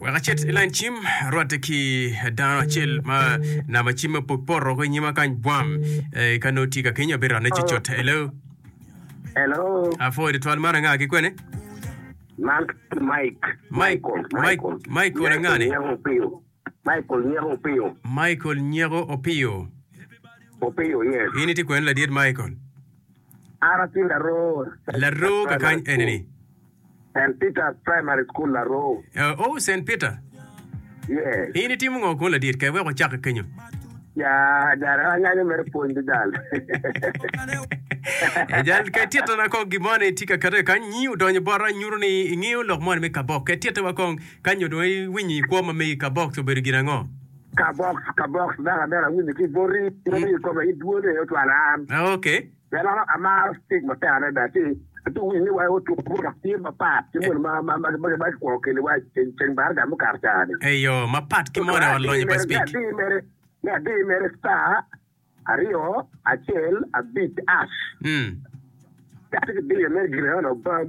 Wek acit i lain cim, arwatte ki dano acel ma namba cim ma pok poto ki nyima kany bwam. Eh, ka nongo tye ka kenyo abiro rane cocot. Hello. Hello, Apwoyo tutwal man anga ki kwene? man ki Mike. Mike, Mike, Michael anga ni? Nyeko Opiyo. Michael Nyeko Opiyo. Michael Nyeko Opiyo. Opiyo, yes. In itye kwene ladiet Michael? An atye laroo. Laroo kakany enini? Saint Peter's Primary School Laroo. Oh, Saint Peter. Yes. In itimo ngo kunu ladit? Ker wek wacak ki kenyo. Ya, ada, an anganyo mere pwony dudan. Ajal, ker titta na kong gimoni tye ka kete kany, nyi odonyo bota nyuto ni ingiyo lok moni me kabox. Ker titta wa kong kany nyo dong iwinyo i kwo ma megi kabox obedo gin ango? Kabox, kabox, daka, daka, awinyo ki boti, boti i kome, i dwone, otwala an. Ah, okay. Melono, amaro tic matek adada ci atye ka winyo ni wai otuk bot dok tye mapat ki moni ma kikwo kiniwa i ceng baraga mukato ca-ni. Eyo, mapat ki moni olonyo pa Spik. Me adir mere, star, aryo, acel, abic, ash. Ka atye ka diyo mere, gin enoni obam.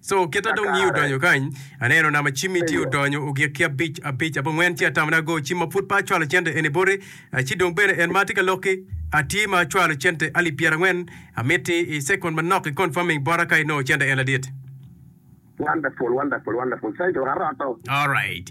Co kita dong nyi odonyo kany, aneno nama cimmi tye odonyo ogik ki abic abic abo ngwen ci atamana go cim ma pud pe acwalo cente eni boti, ci dong bene en ma atye ka lokki atye ma acwalo cente alip pyera ngwen, amitti i second manok i confirming bota ka inongo cente en ladit. Wonderful wonderful wonderful saito aroto. Alright.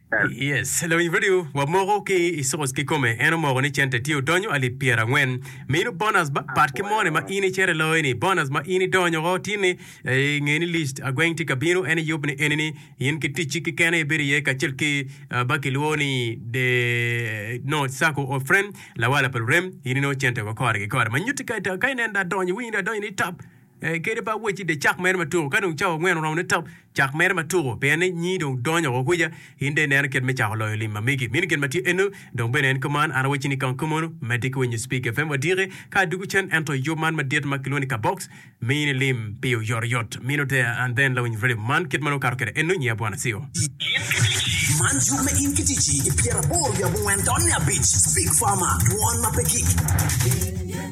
Yes, lawiny radio wa moko ki i source kikome en omoko ni cente tye odonyo alip pyera angwen mino bonus ba pat ki moni ma in icero iloyo ni bonus ma in idonyo o tin ni i nge ni list agweng tye ka bino en iyub ni eni ni in ki ticci ki kene ibedo iye kacel ki ba ki lwo ni the no circle of friend lawala pa lurem in inongo cente wa kore ki kore ma nyuti ka ita ka inen adonyo winy adonyo ni tap Kadi pe awacci dye cak mere ma tuko, ka dong cawa angwen oromo ni top cak mere ma tuko, pien ni nyi dong donyo woko kwica, in dong ineno kit me cako loyo lim ma megi. Mini gin ma tye eno, dong bene en kuman. An awacci ni kong ka mono, medde ki winyo Spig FM wadiki ka adwogo cen, ento yub man madit ma kilwongo ni Kabox miyi ni lim pi oyotoyot. Mino there and then lawiny radio man kit ma nongo kato kwede eno, nyiya Bwana Siyo. In ki Ticci, Man yub me In ki Ticci i pyeraboro wiye abongwen done abic, Spig Farmer, dwon ma pe kik.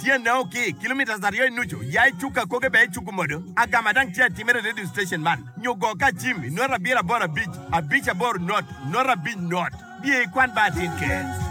Tyene o ki kilometres aryo i nucu, ya i cuk akoge bene icuku modo. Agama dang tye atimere i radio station man, nyo go ka acim i nota abiro aboro abic, abic aboro not, not abic not. Biye i kwan ba atin ker.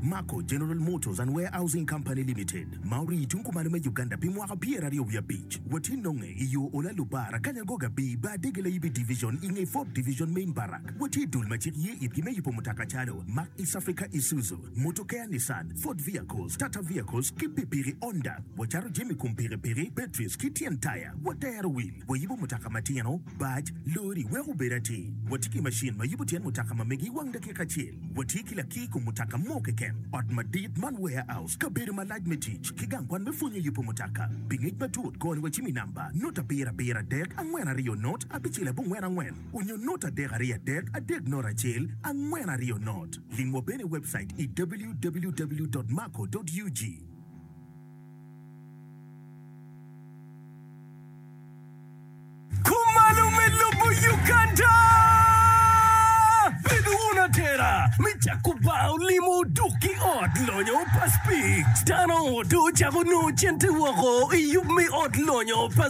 Mako General Motors and Warehousing Company Limited ma orii tung kumalo me Uganda pi mwaka pyer aryo wiye abic. Watye nonge i yo Ola Lubar akanya go ga bii ba Adege Layibi Division i nge Ford Division Main Barrack. Watye i dul ma cik ye itgi me yubo mutoka calo Mack East Africa Isuzu, Mutokeya Nissan, Ford Vehicles, Tata Vehicles ki pikpiki Honda. Wacato jami kom pikipiki, batteries ki tyen taya. Watero wil, wayubo mutoka matino, bac, lori wek obed atir. Watye ki macin ma yubo tyen mutoka ma megi i wang dakika acel. Watye ki lakir kom mutoka mo keken. Ot madit man warehouse, kabedo malac me tic, ki gang kwan me pwonyo yubo mutoka. Pi ngec matut, kor wacimi namba, nota abiro abiro adek, angwen aryo not, abicel abongwen angwen. Onyo not adek ariyo adek adek not acel angwen ariyo not. Ling wa bene i webcait i www.maco.ug. Kumalo me lobo Uganda. Bed wun atera me cako bar olimo dok ki ot lonyo pa Spik. Dano ongo dong ocako nongo cente woko i yub me ot lonyo pa.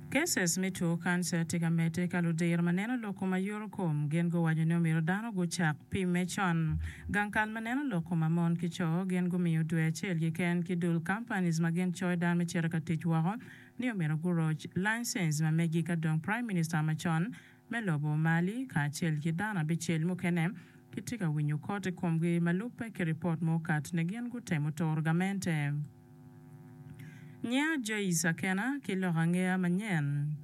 Cases me two kanca tye ka medde ka ludiro ma neno lok kom ayoro kom gin guwaco ni omyero dano gucak pimme con. Gang kal ma neno lok kom amon ki co gin gumiyo dwe acel keken ki dul companies ma gin coyo dano me cito ka tic woko ni omyero guroc license ma megi ka dong Prime Minister macon me lobo mali kacel ki dano abicel mukene kitye ka winyo kot i komgi ma lubbe ki ripot ma okat ni gin gutemo toro gamente. Nyiya Joyce Akena ki lok angeya manyen.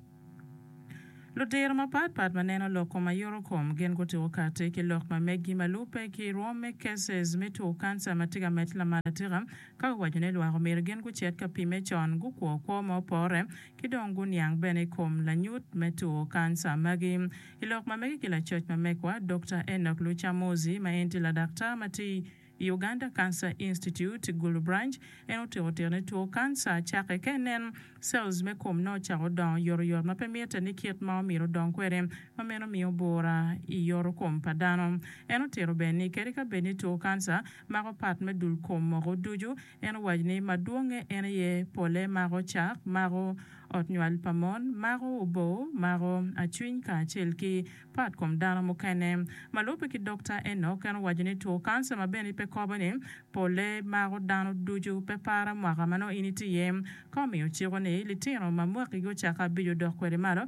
Ludiro mapat pat ma neno lok kom ma yoto kom gin gutiko kati ki lok ma meggi ma lubbe ki rwom me cases me two cancer ma tye ka medde lamal atika ka guwaco ni lwak omyero gin gucit ka pime con gukwo kwo ma opore ki dong guniang bene i kom lanyut me two kanca magi. I lok ma mege ki lacoc ma megwa, Dokta Enock Lucamozi, ma en tye ladaktar ma tye i Uganda Cancer Institute, Gulu Branch, en otyeko tiro ni two kanca cakke ka inen cells me kom nongo ocako dongo yotoyot ma pe mitte ni kit ma omyero odong kwede, ma meno miyo bwura i yoto kom pa dano. En otito bene ni kadi ka bed ni two kanca mako pat me dul kom moko ducu, En owaco ni, Madwongnge en aye, Pole mako cak, mako ot nywal pa mon, mako oboo, mako acwiny kacel ki pat kom dano mukene. Ma lubbe ki Dokta Enock, en owaco ni two kanca ma bene pe kobo ni pole mako dano ducu. Pe para mwaka ma nongo in itye iye ka omiyo ciko ni litino ma mwakigi ocako abico dok kwede malo,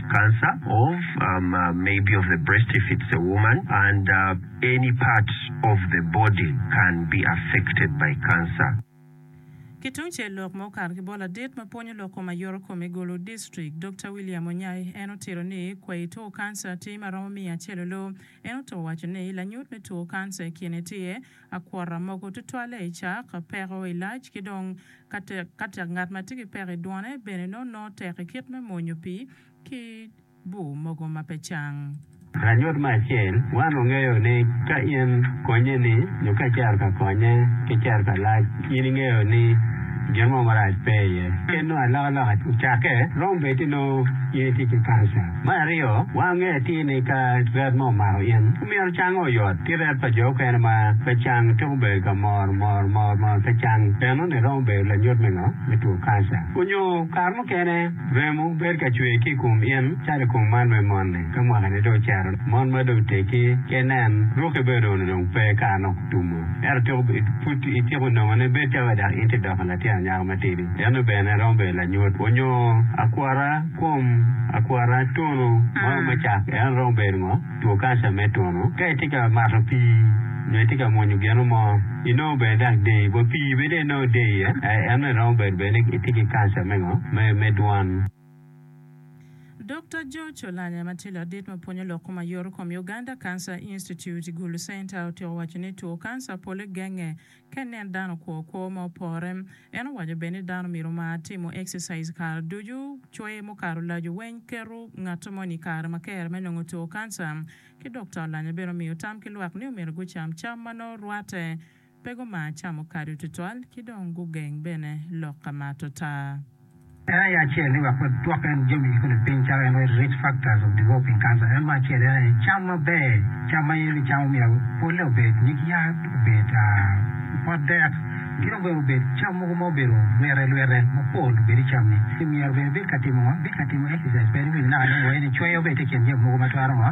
cancer or um maybe of the breast if it's a woman and uh any part of the body can be affected by cancer. Ki tung cel lok ma okato ki bot ladit ma pwonyo lok kom ayoro kom i Gulu District, Dokta William Onyai, en otito ni kwayi two kanca tye ma romo miya celolo. En oto waco ni lanyut me two kanca i kine tye, Akwota mogo tutwalle i cak, peko i lac, ki dong ka tek. Ka tek ngat ma tye ki peko i dwone bene nongo nongo tek i kit me mwonyo pii ki bur mogo ma pe cang. Lanyut me acel, Wan wangeyo ni ka in konye ni nyo ka icito ka konye ki cito ka lac, in ingeyo ni gin mo marac pe iye. Kit nongo alokaloka ocakke, romo bed-di nongo in itye ki kanca. Me aryo, wange atir ni ka ret mo omako in, omyero cange oyot. Ki ret pa jo okene ma pe cang twero bedo ka mor mor mor mor pe cang. Enoni romo bedo lanyut me ngo? Me two kanca. Onyo kare mukene remo bedo ka cwer ki i kom in calo i kom man me moni. Ka mwaka ne dong ocito, mon ma dong oteggi ki inen ruki bene onongo dong pe kara nok otumo. Ento twero bedo pud ityeko nongo ne bedo calo dok in tye doko latin anyaka matidi. Enoni bene romo bedo lanyut. Onyo akwota. Kom akwara twongo ma romo cak en romo bedo ngo? Two kanca me twongo. Ka itye ka mato pii nyo itye ka mwonyo gino mo, inongo bene dok deyi wa pii bene dong inongo deyi iye, eno aye romo bedo bene ni itye ki kanca me ngo? Me dwan. Dokta George Olanya ma tye ladit ma pwonyo lok kom aye yoto kom i Uganda Cancer Institute, Gulu Center, otyeko waco ni two kanca pole genge Ka inen dano kwo kwo ma opore. En owaco bene ni dano myero omar timo exercise kare ducu, cwer mukato lajo weng, keto ngat moni i kare ma kere me nongo two kanca, ki dok to alanya bene omiyo tam ki lwak ni omyero gucam cam ma nongo rwate pe gumar camo kado tutwal ki dong gugeng bene lok ka mato taa. En aye acel ni wek wagwok en jami i kodi piny calo en aye risk factors of developing cancer en me acel en aye cam maber cam ma in ni camo myero pole obed nyig yat obed pot dek ki dong bene obed cam mogo ma obedo lwete lwete mapol obed i cam ni ki myero bene ibed ka timo ngo ibed ka timo exercise pe ni winyo naka dong wa in icweyo bene tye i kin jami mogo ma twero ngo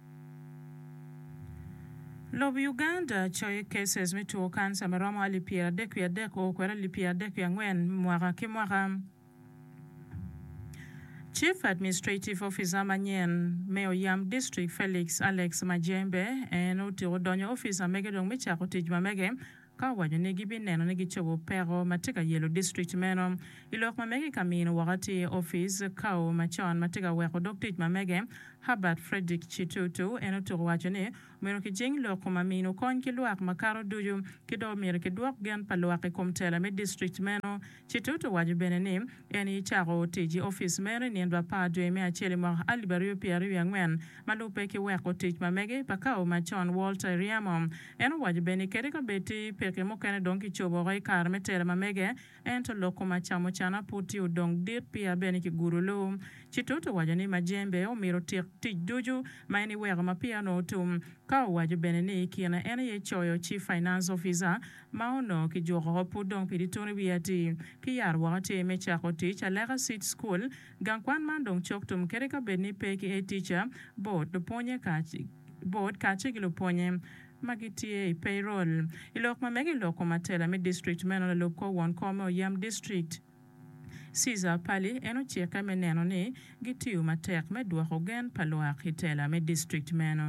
Lob Uganda coyo cases me two cancer ma romo alip pyera adek wiye adek oo kwede alip pyera adek wiye angwen mwaka ki mwaka. Chief Administrative Officer manyen me Oyam District Felix Alex Majembe en otyeko donyo office ma mege dong me cako tic ma mege. ka owaco ni gibineno ni gicobo peko ma tye ka yelo district meno. I lok ma mege ka mino woko atir opic Kau macon ma tye ka weko dog tic ma mege Herbert Fredrick Chitutu en otuko waco ni omyero kijing loko ma mino kony ki lwak makato ducu ki dong omyero kidwok gen pa lwak i kom tela me district meno Chitut owaco bene ni en aye cako tic i opic meno i nino apar dwe me acel i mwaka alip aryo pyera aryo wiye angwen, ma lubbe ki weko tic ma mege pa kawo macon Walter Iriamo. En owaco bene ni kadi ka bed ti peke mukene dong ki cobo woko i kare me tela ma mege, ento lok kom acamo cana pud ti odong dit pia bene ki gudo luu. Chitut owaco ni Majembe omito tik tic ducu ma en iweko ma pia onongo tum, ka owaco bene ni i kine en aye coyo Chief Finance Officer Ma onongo kijuko pud dong pi ditun i wi atii. Ki yaro woko atii me cako tic aleka cit cukul, gang kwan man dong cok tum kadi ka bed ni pe ki etica, bord, lupwonye kac, bord kace ki lupwonye ma gitye i payroll. I lok ma mege i lok kom atela me district meno lalub kor won kor me oyam district, Cesar Pali en ocikke me neno ni gitiyo matek me dwoko gen pa lwak i tela me district meno.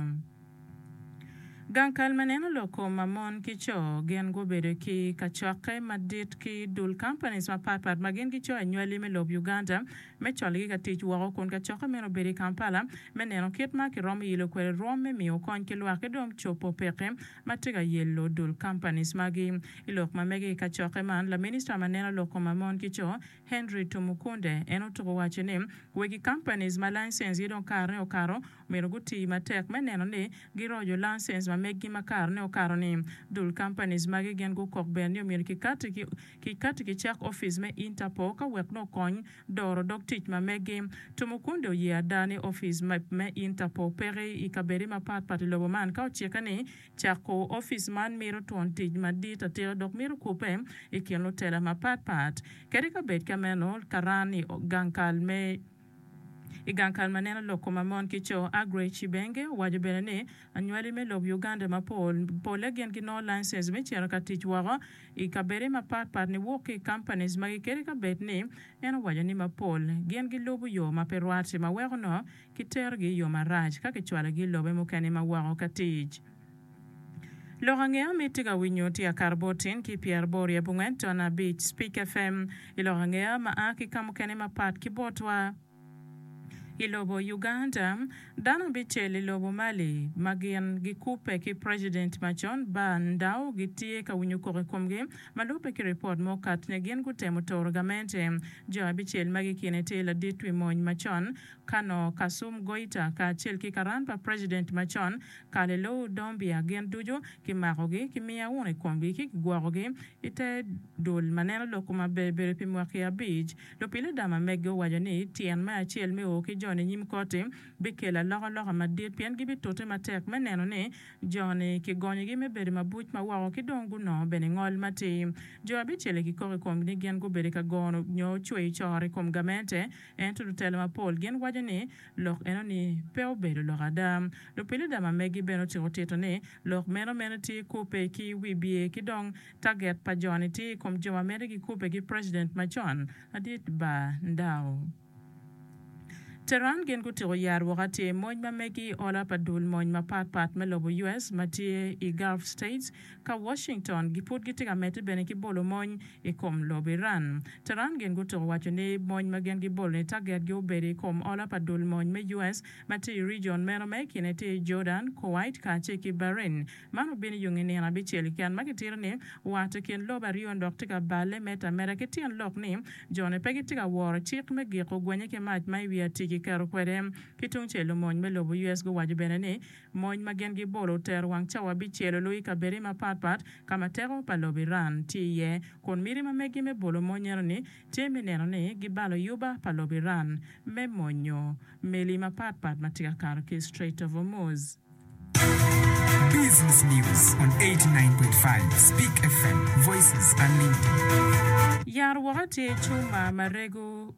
Gang kal ma neno lok kom ma mon ki co gin gubedo ki kacokke madit ki dul companies mapat pat ma gin gicoyo anywali me lob Uganda me cologi ka tic woko kun kacokke meno obedo i Kampala me neno kit ma kiromo yilo kwede rwom me miyo kony ki lwak ki dong copo pekki ma tye ka yello dul companies magi I lok ma mege i kacokke man, Laminista ma neno lok koma mon ki co, Henry Tumukunde, en otuko waco ni wegi companies ma license gi dong karene okato omyero gutii matek me neno ni girojo license ma meggi ma karene okato ni. Dul companies magi gin gukok bene ni omyero ki kati ki cak office me Interpol ka wek nongo okony doro dog tic ma meggi. Tumukunde oye ada ni office me Interpol peke i kabedi ma pat pat i lobo man ka ocikke ni Cako opic man mito twon tic madit atika dok mito kubbe i kin lutela mapat pat. Kadi ka bed ka meno, karan i gang kal me I gang kal ma neno lok koma mon ki co, Aggrey Chibenge owaco bene ni, Anywali me lob Uganda mapol, polle gin ginongo license me cito ka tic woko i kabede mapat pat niwok ki i companies magi kadi ka bed ni en owaco ni mapol gin gilubo yo ma pe rwat ma weko nongo Kiterogi i yo marac ka kicwalogi i lobe mukene ma woko ka tic. Lok ange ami itye ka winyo tye akato bot tin ki pyera boro i abongwen ton abic Speak FM i lok ange ma a ki kamukene mapat ki botwa i lobo Uganda. Dano abicel i lobo Mali ma gin gikubbe ki president ma con Bah Ndaw gitye ka winyo koko i komgi ma lubbe ki ripot ma okato nyo gin gutemo toro gamente jo abicel magi kine tye ladit wi mony ma con Kano, Kasum Goita kacel ki karan pa president macon, Kalelou Dombia gin ducu kimakogi, kimiya wunu i komgi ci kigwokogi. I te dul ma neno lok koma ber bedo pi mwaki abic, lupiluda ma mege owaco ni tyen me acel me o ki jo ninyim koti bikelo alokaloka madit pien gibitute matek me neno ni jo ni kigonyogi me bedo mabuc ma woko ki dong gunongo bene ngol matir. Jo abicel-li kikok i komgi ni gin gubedo ka gono nyo cweyo coro i kom gamente, Ento lutela mapol gin waco ni lok enoni pe obedo lok ada. Lupiluda ma megi bene ociko tito ni lok meno mene tye i kubbe ki wibye ki dong taget pa joni tye i kom jo ma mito gikubbe ki president macon madit Bar Ndao. Tehran gin gutiko yat woko atir mony ma megi i ola pa dul mony mapat pat me lobo US ma tye i Gulf States Ka Washington gipud gitye ka medde bene ki bolo mony i kom lobo Iran, Tehran gin gutuko waco ni mony ma gin gibolo ni tagetgi obedo i kom ola pa dul mony me US ma tye i region meno ma i kine tye Jordan, Kuwait kacel ki Bahrain. Man obino i yo nge nino abicel keken ma kitito ni wat i kin lobo aryo-ni dok tye ka balle medo ameda ki tyen lok ni jone pe gitye ka woro cik me giko gwenye ki mac ma i wi atic kiketo kwede ki tungcel. Omony me lobo US guwaco bene ni Mony ma gin gibolo otero wang cawa bicel olu i kabedde mapat pat ka ma teko pa lobo Iran tye iye, kun miti ma megi me bolo mony enoni tye me neno ni gibalo yuba pa lobo Iran me monyo meli mapat pat ma tye ka kato ki i Strait of Hormuz. Business News on eighty nine point five Speak FM, Voices Unlimited. Yar woko atir cuma ma rego.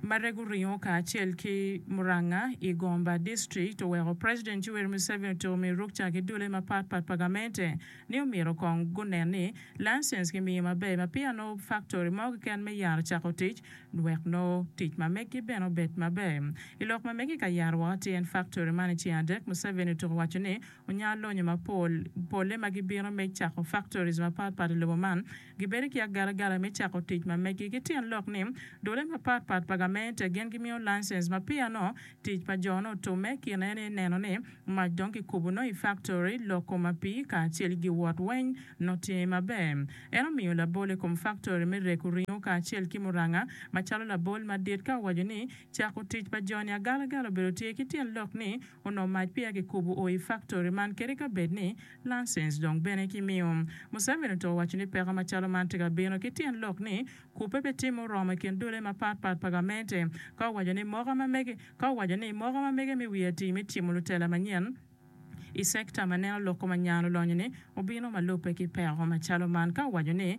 Marega oringo kacel ki Muranga i Gomba district oweko President Yoweri Museveni otiko miyo ruk ca ki dulle mapat pat pa gamente ni omyero kong gunen ni license kimiyo maber ma peya nongo factory mo keken me yar ocako tic wek nongo tic ma megi bene obed maber i lok ma megi ka yaro woko tyen factory man i ceng adek Museveni otuko waco ni onyalo lonyo mapol polle ma gibino me cako factories mapat pat i lobo man Gibedo ki agalagala me cako tic ma megi. Ki tyen lok ni, dule mapat pat pa gamente gin gimiyo lancens ma peya nongo tic pa jo-nu otumme, kine en aye neno ni mac dong kikubo nongo i faktori, loko mapii, kacel ki giwot weny nongo tye maber. En omiyo labol i kom faktori me reko ringo kacel ki muranga macalo labol madit ka owaco ni cako tic pa jo-ni agalagala obedo tye ki tyen lok ni Onongo mac peya kikubo o i faktori man kadi ka bed ni lancens dong bene kimiyo. Museveni otuko waco ni peko macalo man tye ka bino ki tyen lok ni kubbe pe tye muromo i kin dule mapat pat pa gamente ka owaco ni moka ma mege ka owaco ni moka ma mege me wi atii me tyemo lutela manyen i sekta ma neno loko ma nyan olonyo-ni obino ma lubbe ki peko macalo man ka owaco ni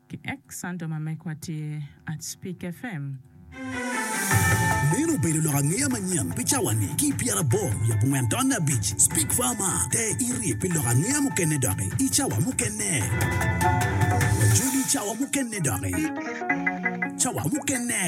Ki ek santo ma mekwa tye at Spik FM. Meno obedo lok angeya manyen pi cawa ni ki pyera aboro wiye abongwen tonne abic. Spik fama te iri pi lok angeya mukene doki i cawa mukene. Wajoli cawa mukene doki. Cawa mukene.